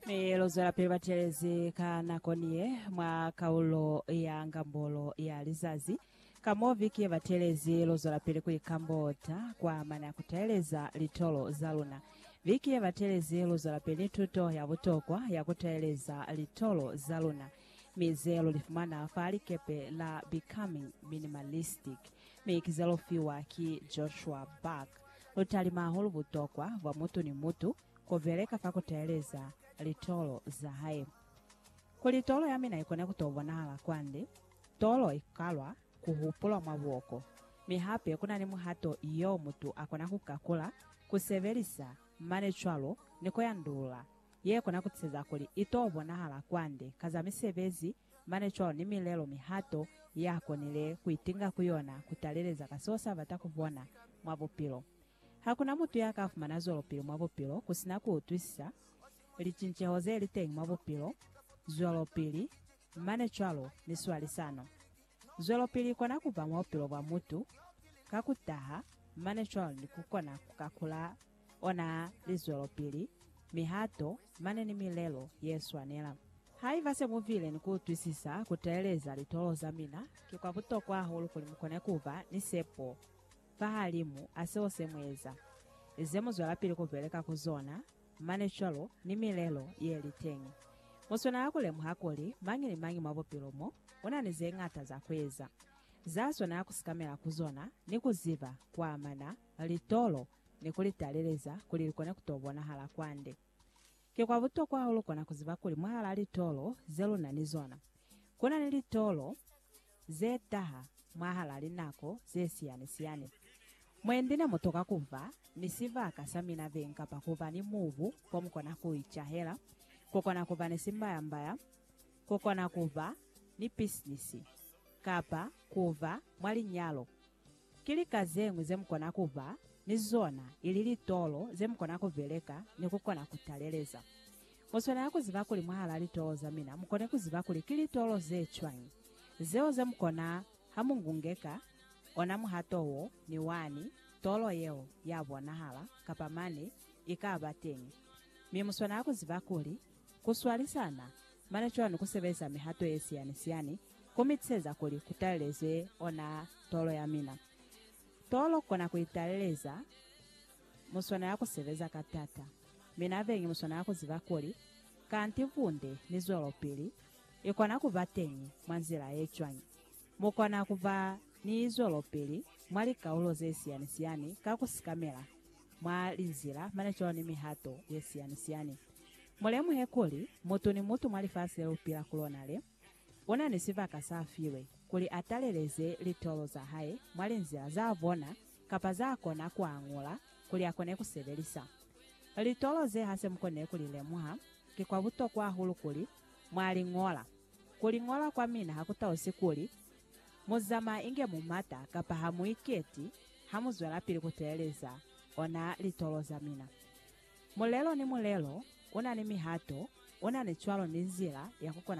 Mi lu zwelapili batelezi ka nako ni ye mwa kaulo ya ngambolo ya lizazi. Ka mo viki ye batelezi lu zwelapili ku ikambota kwa mana ya ku taeleza litolo za luna. Viki ye batelezi lu zwelapili ni tuto ya butokwa ya ku taeleza litolo za luna, mi ze lu li fumana fa likepe la Becoming Minimalistic, mi ki ze lu fiwa ki Joshua Buck. lu talima hahulu butokwa bwa mutu ni mutu ku beleka fa ku teeleza litolo za hae. Kuli tolo ya mina i kone ku to bonahala kwande, tolo i kalwa ku hupulwa mwa buoko, mi hape ku na ni muhato yo mutu a kona ku kakula, ku sebelisa, mane cwalo ni ku yandulula, ye kona ku tiseza kuli i to bonahala kwande ka za misebezi Mane cwalo ni milelo, mihato, ya konile ku itinga ku yona ku taleleza ka seo sa bata ku bona mwa bupilo. Ha ku na mutu ya ka fumana zwelopili mwa bupilo ku si na ku utwisisa licinceho ze li teñi mwa bupilo, zwelopili, mane cwalo ni swalisano. Zwelopili i kona ku ba mwa bupilo bwa mutu ka ku taha, mane cwalo ni ku kona ku kakula Ona lizwelopili, mihato, mane ni milelo yeswanela. Haiba se mu bile ni kuutwisisa kuteeleza litolo za mina, ki kwa butokwa hahulu kuli mukone kuba ni sepo fahalimu a seo se mueza, ze muzwelapili kubeleka ku zona, mane cwalo ni milelo yeli teñi. Muswanela kulemuha kuli mañi ni mañi mwa bupilo mo, una ni zeñata za kueza, zaswanela kusikamela ku zona ni kuziba kuamana litolo ni ku li taleleza kuli li kone ku t'o bonahala kwande. Ki kwa butokwa hahulu kona ku ziba kuli mwahalaa litolo ze lu na ni zona, ku na ni litolo ze taha mwahalaa linako ze siyani-siyani. Mwendi ne mu toka ku ba ni sibaka sa mina beñi kapa ku ba ni mubu ko mu kona ku icahela, ku kona ku ba ni simbaya-mbaya, ku kona ku ba ni pisinisi, kapa ku ba mwa linyalo. Ki lika zeñwi zemukona kuba ni zona ili litolo zemukona kubeleka ni kukona kutaleleza. Muswanela kuziba kuli mwahalaa litolo zamina mukone kuziba kuli ki litolo zecwañi zeo zemukona hamungungeka ona muhato wo ni wani tolo yeo yabonahala kapa mane ikaba teñi. Mi muswanela kuziba kuli kuswalisana mane cwani kusebelisa mihato yesiyanisiani Ku mitiseza kuli ku talelezwe ona tolo ya mina. Tolo kona ku italeleza muswana ya ku sebeza ka tata. Mina bengi muswana ya ku ziba kuli kanti bunde ni zwelopili i kona ku ba teñi mwa nzila ye cwañi. Mu kona ku ba ni zwelopili mwa likaulo ze siyani-siyani ka ku sikamela mwa linzila mane cwalo ni mihato ye siyani-siyani. Mu lemuhe kuli mutu ni mutu mwa lifasi le lu pila ku lona le, Unani sibaka sa filwe kuli ataleleze litolo za hae mwa linzila za bona kapa za kona kuañula kuli akone kusebelisa. Litolo ze hase mukone kuli lemuha, ki kwa butokwa hahulu kuli mwa li ñola. Ku li ñola kwa mina ha ku tausi kuli mu zamaa inge mu mata kapa ha mu iketi ha mu zwelapili ku teleleza ona litolo za mina. Mulelo ni mulelo unani mihato, unani cwalo ni nzila ya ku kona